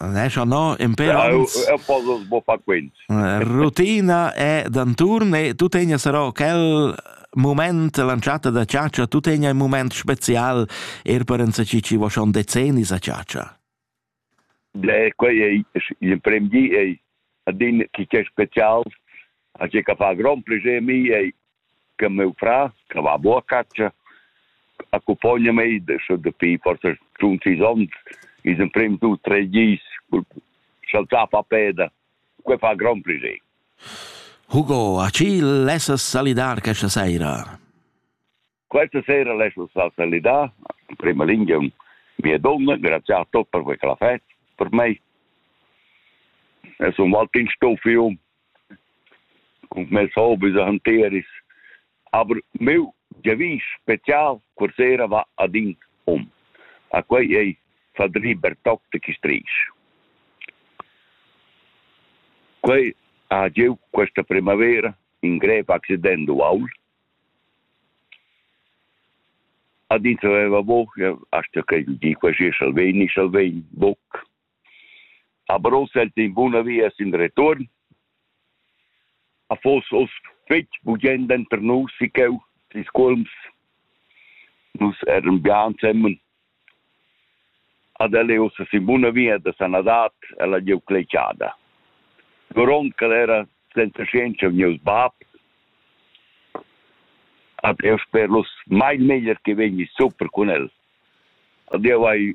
Nescha no imper ans. Eu posso sboffar quint. Rutina è d'anturn e tu tegna sarò quel moment lanciata da ciaccia, tu tegna un moment spezial er per ens chi ci vo schon decennis a ciaccia. Beh, quei ei l'emprem di ei adin chi che special a che ca fa grand plaisir mi ei che meu fra, che va boa catscha, accompagna mei adesso dapi forse schon sis onns, is emprem tu tre gis saltava a peda, que fa gran piacere. Hugo, a chi lessas salidar questa sera? Questa sera lascio salidar, in prima linea mia donna, grazie a tutti per questa festa, per me. Es un Waltinstoff, cun mes hobis e hanteris. Aber meu giavisch special quarsera va ad in um. A quei ei Fadri Bertoc de Chistrisch. Quei ha giu questa primavera in grev accident uaul. Ad ins aveva buca, asta che di quasi salvegni, salvegni, buc. A Bros el in buna via sin retuorn. A fos oz fetg bugend denter nus e cheu, ils cuolms. Nus eran bia ensemen. Ad el è ussa sin buna via da sanadad ella giu cletschada. Grond che era senza scienza vegnius bab. Ad eu sper los mai meglier che vegni super cun el. Ad eu hai